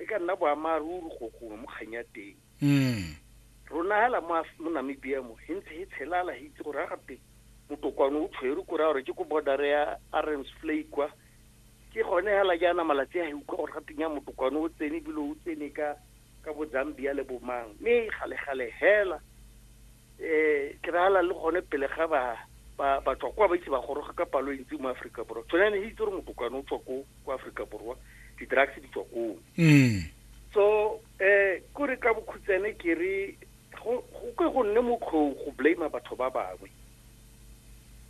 e ka nna boammaaruri go gongwe mo kgang ya teng rona hela mo mo Namibia mo he ntse he tshelala he itse gore ga teng motokwane o tshwere ko raya gore ke ko border ya Arons Flay kwa ke gone hela jaana malatsi a he utlwa gore ga teng ya motokwane o tsene ebile o tsene ka ka bo Zambia le bomang mme gale gale hela um kry-ala le gone pele ga ba ba ba tswa kwa ba itse ba goroga ka palo e ntsi mo aforika borwa tsone yane itse gore motokwane o tswa ko ko aforika borwa di-drugs di tswa koo mm. so um kore ka bokhutsane ke re go ke go nne motlhong go blame batho ba bangwe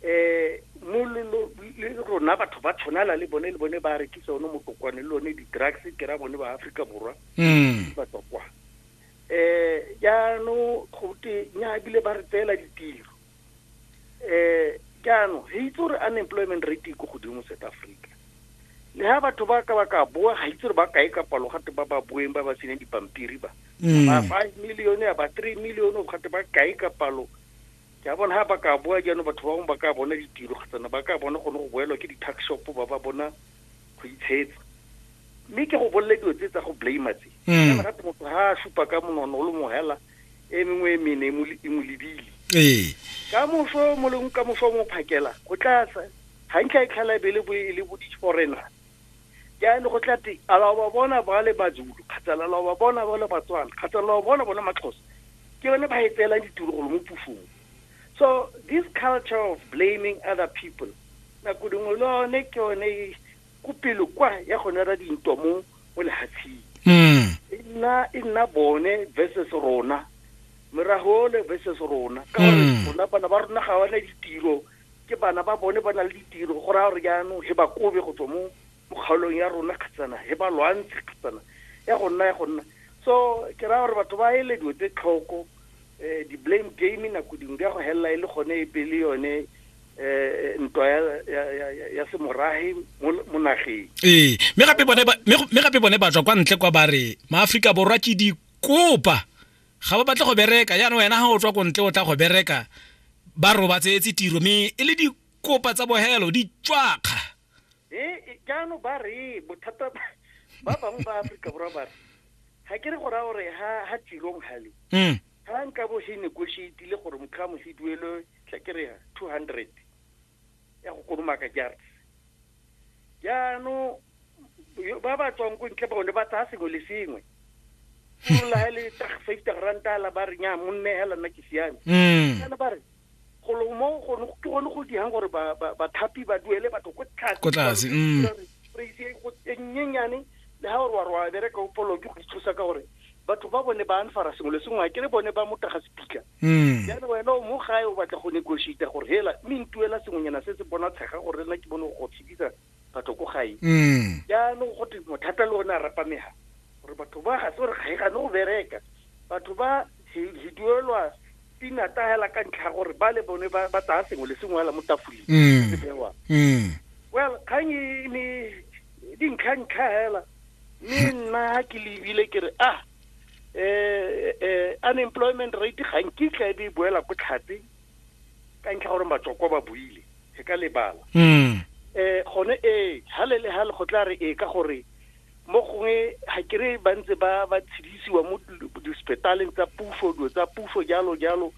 um mololo le rona batho ba tshwanala le bone le bone ba rekisa one motokwane le one di-drugs ke ra bone ba aforika borwa mm. ba tswa kwa eh jaanong go te nya ebile ba re tseela ditiro eh jaanong re itse gore unemployment rate e ko godimo south africa le ha batho ba ka ba ka boa ga itse gore ba kae ka palo gate ba ba boeng ba ba seneng dipampiri ba mm. ba five million ya ba three million gate ba kae ka palo ja bona ha ba ka boa jaanong batho ba bangwe ba ka bona ditiro kgotsana ba ka bona gone go boelwa ke di-tax shop ba ba bona go itshetsa mme ke go bolele dilo tse tsa go blame tse mm. rate motho ha a supa ka monono o le mohela e mengwe e mene e mo lebile ee. ka moso mo leng ka moso mo phakela go tla hantle e tlhala bele bo e le bo diforena jaanong go tla te ala ba bona ba le bazulu kgotsa ala ba bona ba le batswana kgotsa ala ba bona bona maxhosa ke bone ba e tseelang ditulogolo mo pusong So this culture of blaming other people nako dingwe le one ke one e ko pele kwa ya go nera dintwa mo mo lehatsheng mm. e nna e nna bone versus rona morago ole versus rona ka gore Mm. rona bana ba rona ga bana ditiro ke bana ba bone ba na le ditiro go raya gore jaanong he ba kobe go tswa mo mo kgaolong ya rona kgatsana e ba lwantshe kgatsana ya go nna ya go nna so ke raya gore batho ba ele dilo tse tlhoko um di-blame game nako dingwe di ya go helela e le gone e pele yone eh ntwa ya ya ya ya semorage mo nageng ee mme gape bone ba mme gape bone ba tswa kwa ntle kwa bare maafrika borwa ke di kopa ga ba batle go bereka yana wena ha o tswa ko ntle o tla go bereka ba robatse etse tiro mme e le di kopa tsa bohelo di tswakga e jaanong ba re bothata ba bangwe ba aforika borwa ba re ga ke re go raya gore ga tirong gale mm. ga nka bo he negotiatile gore motlhamo he duelwe tla ke re two hundred ya go kolomaka jars jaanong ba ba tswang ko ntle bone ba tsaya sengwe le sengwe la le five ranta la ba re nya monne hela nna ke siame kana mm. ba re golo mo gone ke gone go diang gore bathapi ba duele batho ko tlase ko tlase mm praise e go e nyenyane le ha gore wa rwa bereka o polo ke go ithusa ka gore batho ba bone ba anfara sengwe le sengwe ke le bone ba motaga sepika mm. jaanong wena o mo gae o batla go negotiate gore hela mme ntuela sengwenyana se se bona tshega gore nna ke bone go tshedisa batho ko gae mm. jaanong go twe mothata le one a rapamega gore batho ba ga se gore ga e gane go bereka batho ba hiduelwa pinata hela ka ntlha ya gore ba le bone ba tsaya sengwe le sengwe hela mo tafoleng mm. se bewa mm. well kgang e ne dintlha-ntlha hela mme hmm. nna ha ke lebile ke re ah um unemployment rate ga nkitla e be e boela ko tlhatse ka ntlha gore matsoko ba buile e ka lebala um gone ee ga le le ga le go tla re ee ka gore mo gongwe ga ke re ba ntse ba ba tshedisiwa mo dispetaleng tsa puso dilo tsa puso jalo jalo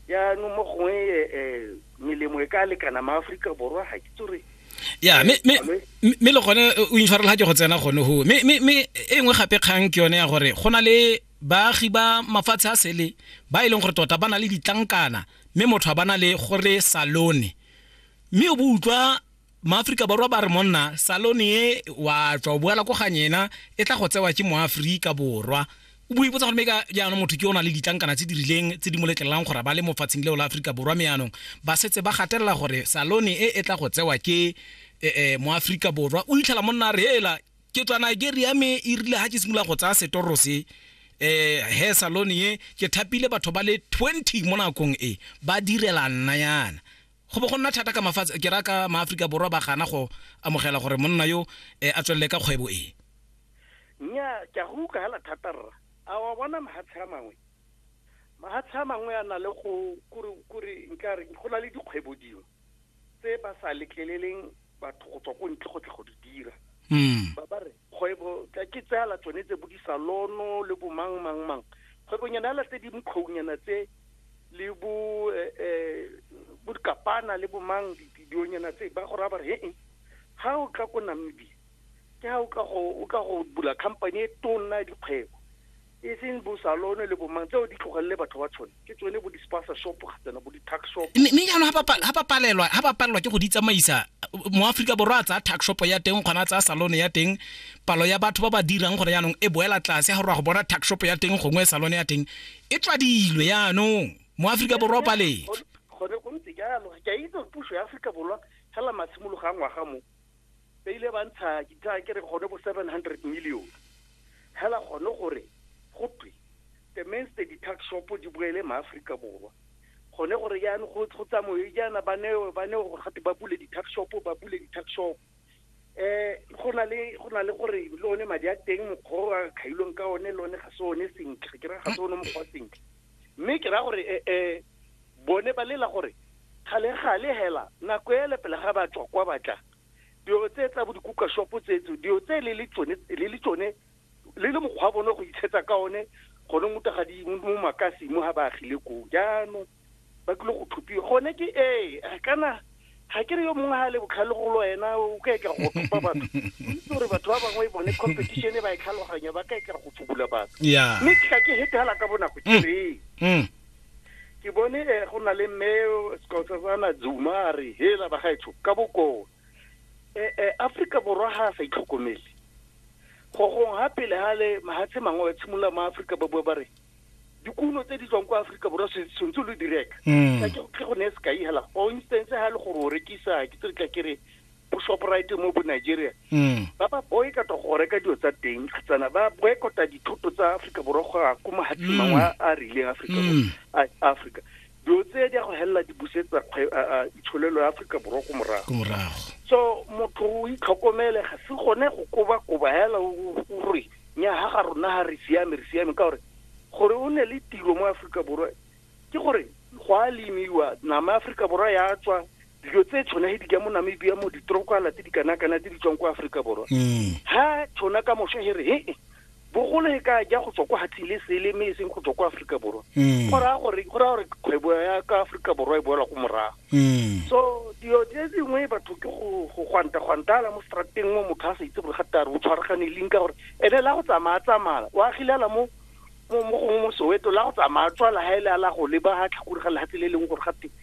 jaanong mo gongwe um melemo e ka lekana maaforika borwa ga ke tsore ya mme le gone o intshwarela ke go tsena gone go mme e nngwe gape kgang ke yone ya gore go na le baagi ba mafatshe a sele ba e leng gore tota ba na le ditlankana mme motho a bana le gore salone mme o bo utlwa maaforika borwa ba re monna salone e wa tswa o boela ko gang ena e tla go tsewa ke moaforika borwa o bo ipotsa gore mme ka jaanong motho ke o na le ditlankana tse di rileng tse di mo letlelelang gore ba le mofatsheng leo la aforika borwa me yaanong ba setse ba gatelela gore salone e e tla go tsewa ke eh, eh, moaforika borwa o itlhela monna a re hela ke tswa nigeria me e rile ga ke simolola go tsaya setoro se eh he salone ye ke thapile batho ba le 20 mo nakong e ba direla nna yana go bo go nna thata ka mafatshe ke ra ka maaforika borwa ba gana go amogela gore monna yo eh, a tswelele ka kgwebo e nya ke a go utlwagela thata rra a wa bona mahatshe a mangwe mahatshe a mangwe a na le go kore nka re go na le dikgwebo dingwe tse ba sa letleleleng batho go tswa ko ntle go tla go di dira hmm. ba ba re kgwebo ke tsela tsone tse bodisalono le bomang mang mang kgwebonyana ya latse di mokgounyana tse le bo eh, eh, bo dikapana le bomang dionyana tse ba go raya ba re he ha o tla ko namibia ke ha o ka go bula company e tonna ya dikgwebo e seng bo salone le bomang tseo di tlogelele batho ba tshone ke tsone bo di-spasa shop gatsena bo di-tuck shop mme jaanong ga ba palelwa ga ba palelwa ke go di tsamaisa mo aforika borwa a tsaya tuck shop ya teng kgona a tsaya salone ya teng palo ya batho ba ba dirang gore jaanong e boela tlase ga gore go bona tuck shop ya teng gongwe salone ya teng e tswadilwe jaanong mo aforika borwa o paletswe gone go ntse jalo ke a itse puso ya aforika borwa fela matshimologo a ngwaga mo ba ile ba ntsha ditla ke re gone bo 700 million hela gone gore go twe the mains the ditax shop di boele maaforika borwa gone gore jaane go tsamaye jaana ba neo ba neo gore gate ba bule ditax shop ba bule ditax shop eh go na le go na le gore le one madi a teng mokgwa o a khailweng ka one le one ga se one sentle ke re ga se one mokgwa sentle mme ke raya gore eh, eh, bone ba lela gore kgale-gale hela nako ele pele ga ba tswa kwa batla dilo tse tsa bo dikuka shopo tsetso dilo tse le le tsone le le tsone le le mokgwa bone go itshetsa ka one gone mo tagadi mo makasi mo ga ba agile koo jaanong ba tlile go tlhopiwa gone ke ee kana ga ke re yo mongwe ga le botlhale go lo ena o ka etla go thopa batho itse gore batho ba bangwe bone competition e ba e tlhaloganya ba ka etla go fubula batho mme ke ka ke hete hala ka bonako ke mm. re mm. ke bone eh, go na le mme sekosana zuma a re hela ba gaetsho ka bokoo eh, eh, afrika borwa ga a sa itlhokomele gogong ga pele ga le mahatshe mangwe ba tshimolola mo afrika ba bua ba re dikuno tse di tswang kwa aforika borwa sentse lo di reka mm. ka ke go ne sekai hela for instance ha le gore o rekisa ke tse ka kere bo shoprite mo bo nigeria mm. ba ba boycota go reka dilo tsa teng tsana ba boycota dithoto tsa aforika borwa go ya ko mahatsimangwe mm. a rileng aforika dilo tse di a go helela di busetsa itsholelo ya aforika borwa ko morago so motho o itlhokomele ga se gone go kobakoba hela o re nyaga ga rona ga re siame re siame ka gore gore o ne le tiro mo aforika borwa ke gore go a lemiwa nama ya aforika borwa ya tswa dilo tse tshwanege di ka mo namibia mo ditrokwala tse di kanakana tse di tswang kwa aforika borwa mm. ha tshwana ka mosha he re he bogolo e ka ja go tswa kwa hathing le sele mme e seng go tswa kwa aforika borwa mm. go raya gore kgwebo ya ka aforika borwa e boelwa ko morago mm. so dilo tse dingwe batho ke go gwanta gwantala mo strateng mo motho a sa itse gore gate a re o tshwaragane leng ka gore ene la go tsamaya tsamaya o agilela mo mo gongwe mo soweto la go tsamaya tswala ga e le a la go leba ga tlhakore ga lehatshe le e leng gore gate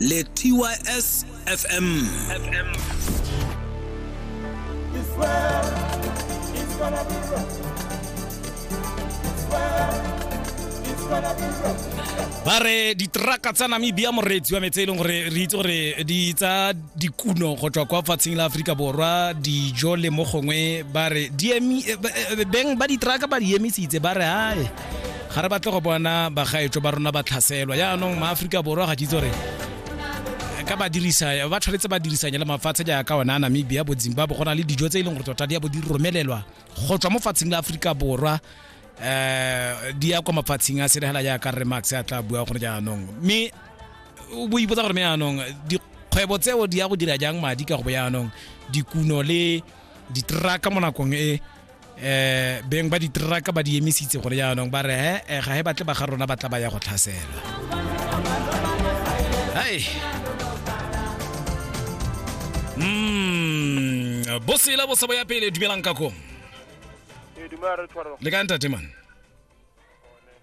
le tys fm It's well, it's gonna be rough. It's well, it's gonna be rough. ba re ditraka tsa namibia moreetsi wa metse e leng gore re itse gore di tsa dikuno go tswa kwa fatsheng la aforika borwa dijo le mo gongwe ba re di emi- eh, ba- eh, beng ba ditraka ba di emisitse ba re ae ga re batle go bona bagaetso ba rona ba tlhaselwa jaanong maaforika borwa ga ke itse gore ka ba dirisa ba tshwanetse ba dirisanye le mafatshe jaaka ona a namibia bo zimbabwe go na le dijo tse e leng gore tota di ya bo di romelelwa go tswa mo fatsheng la aforika borwa um di ya kwa mafatsheng a selegela jaaka re max a tla bua gore jaanong mme o bo ipotsa gore me jaanong dikgwebo tseo di ya go dira jang madi ka go bo jaanong dikuno le diteraka mo nakong e eh beng ba diteraka ba di emisitse gore jaanong ba re he eh, ga he batle ba ga rona ba tla ba ya go tlhasela hai mm bosela bo sebo ya pele dumelang ka ko Ee, dumela re tshwarwa le ka ntate man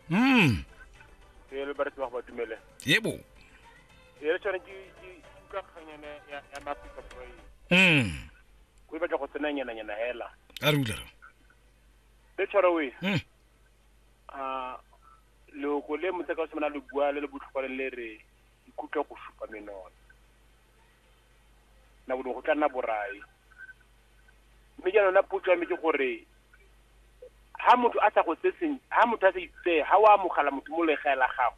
mm e le ba re tshwarwa ba dumele yebo e re tshwana ke ke- ke ka kganyana ya ya mafika boy mm o batla go tsena nyana nyana hela a rula le tshwara we hmm. a loko le motse ka semana le bua le le botlhokwa le re ikutlwa go supa menona na go go tla nna borai mme jaanong na potso ya me ke gore ha motho a sa go tse ha motho a sa itse ha o amogela motho mo legae la gago